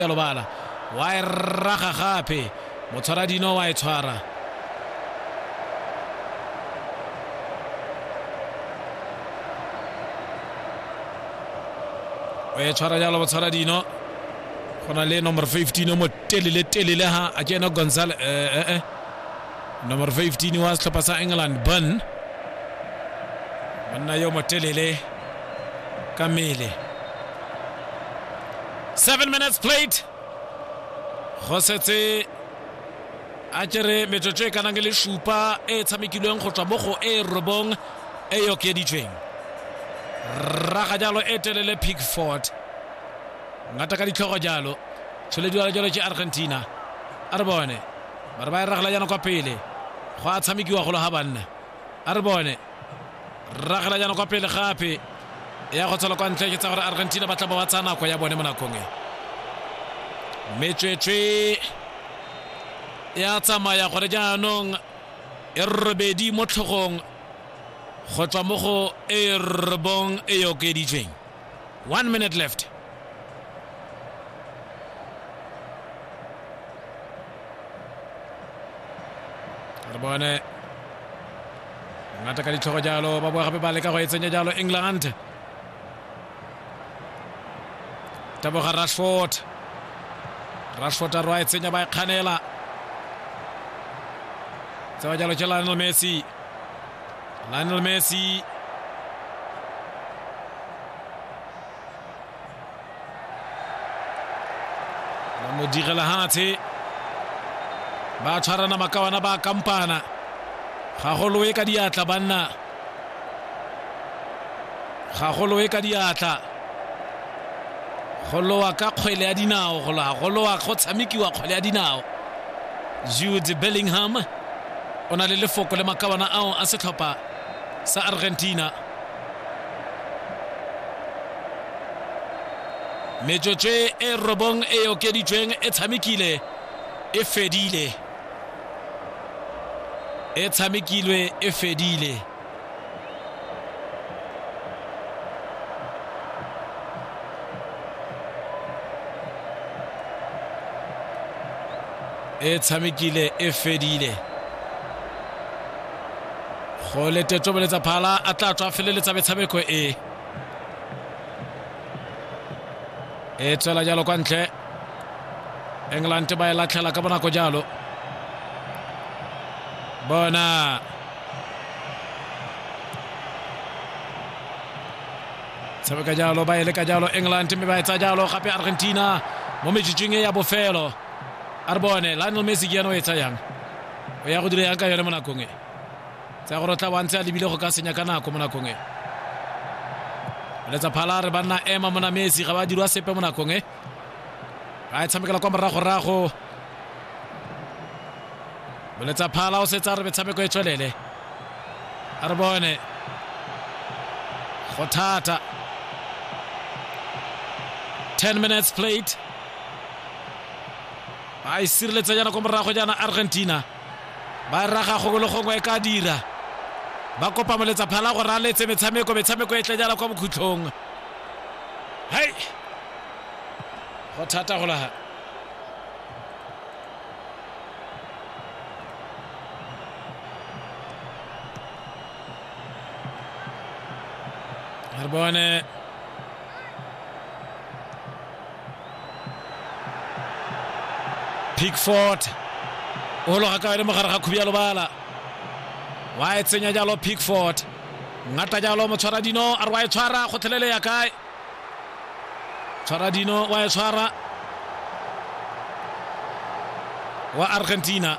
ya lobala wa e raga gape motshwara dino wa e tshwara o e tshwara jalo motshwara dino go na le number 15 o mo telele telele ha a kena gonzale eh, eh, eh. number 15 wa setlhopha sa england bun monna yo mo telele ka mele seven minutes played go setse a kere metsotso e kanang le supa e tshamekilweng go tswa mo go e robong e e okeditsweng raga jalo e telele pickford ngata ka ditlhogo jalo tsholediwala jalo ke argentina a re bone ba re ba e ragela jana kwa pele go a tshamekiwa golo ga banna a re bone ragela jaana kwa pele gape ya go tshola kwa ntle ke tsa gore argentina ba tla ba ba tsaya nako ya bone mo nakong e metswetswe ya tsamaya gore jaanong e robedi mo tlhogong go tswa mo go e robong e e okeditsweng one minute left re bone ngata ka ditlhogo jalo ba boa gape ba leka go e tsenya jalo england taboga rashford rashford a roa e tsenya ba e kganela tseba jalo ke lionel messi lionel messi ba mo direla hatshe ba tshwarana makawana ba kampana ga go loe ka diatla banna ga go loe ka diatla go lowa ka kgwele ya dinao go lowa go lowa go tshamekiwa kgwele ya dinao jude bellingham o na le lefoko le makawana ao a setlhopha sa argentina metsotso e robong e okeditsweng e tshamekile e fedile e tshamekilwe e fedile e tshamekile e fedile go letetso boletsa phala a tla tswa feleletsa metshameko e e tswela jalo kwa ntle england ba e latlhela ka bonako jalo bona tshameka jalo ba e leka jalo england mme ba etsa jalo gape argentina mo metsitsing e ya bofelo a re bone lionel messi ke ene o e tsayang o ya go dira yang ka yone mo nakong e tsa gore o tla wantse a lebile go ka senya ka nako mo nakong e letsa phala re banna ema mona messi ga ba dirwa sepe mo nakong e a e tshamekela kwa moragorago boletsa phala o setsa re metshameko e tswelele a re bone go thata 10 minutes played ba e sireletsa jaana kwa morago jaana argentina ba e raga gongwe le gongwe e ka dira ba kopa moletsa phala gore a letse metshameko metshameko e tle jaana kwa bokhutlhong hei go thata go laga re bone pickford o loga ka yone mo gare ga khubi ya lobala wa e tsenya jalo pickford ngata jalo motshwara dino a re wa e tshwara gotlhelele ya kae tshwara dino wa e tshwara wa argentina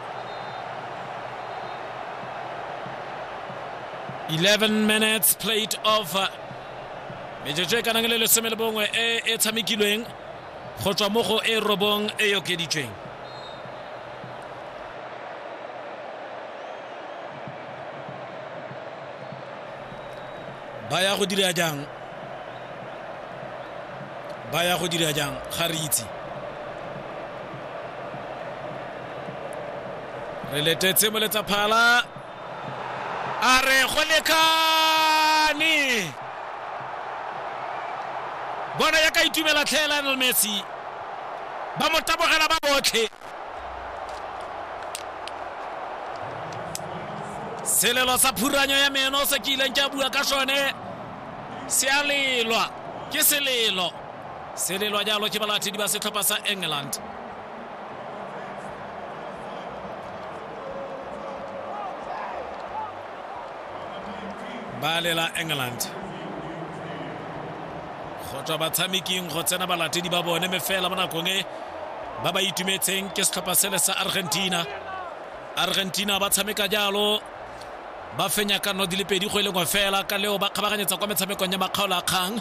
11 minutes played of uh, metsotso e kanang le lesome le bongwe e e tshamekilweng go tswa mo go e robong e e okeditsweng ba ya go dira jang ba ya go dira jang ga re itse re letetse moletsa phala A re go lekane. Bona ya ka itumela tlhe Lionel Messi. Ba mo tabogela ba botlhe. Selelo sa phuranyo ya meno se ke ileng ke a bua ka sone se a lelwa ke selelo selelwa jalo ke balatedi ba setlhopha sa england ba lela england go tswa batshameking go tsena balatedi ba bone me fela mo nakong e ba ba itumetseng ke setlhopha sele sa argentina argentina ba tshameka jalo ba fenya ka nno di le pedi go e lengwe fela ka leo ba kgabaganyetsa kwa metshamekong ya makgaolo a kgang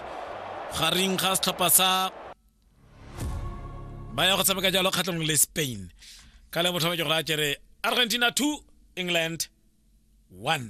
gareng ga setlhopha sa ba ya go tshameka jalo kgatlhong le spain ka le mothome ke gore a kere argentina 2 england 1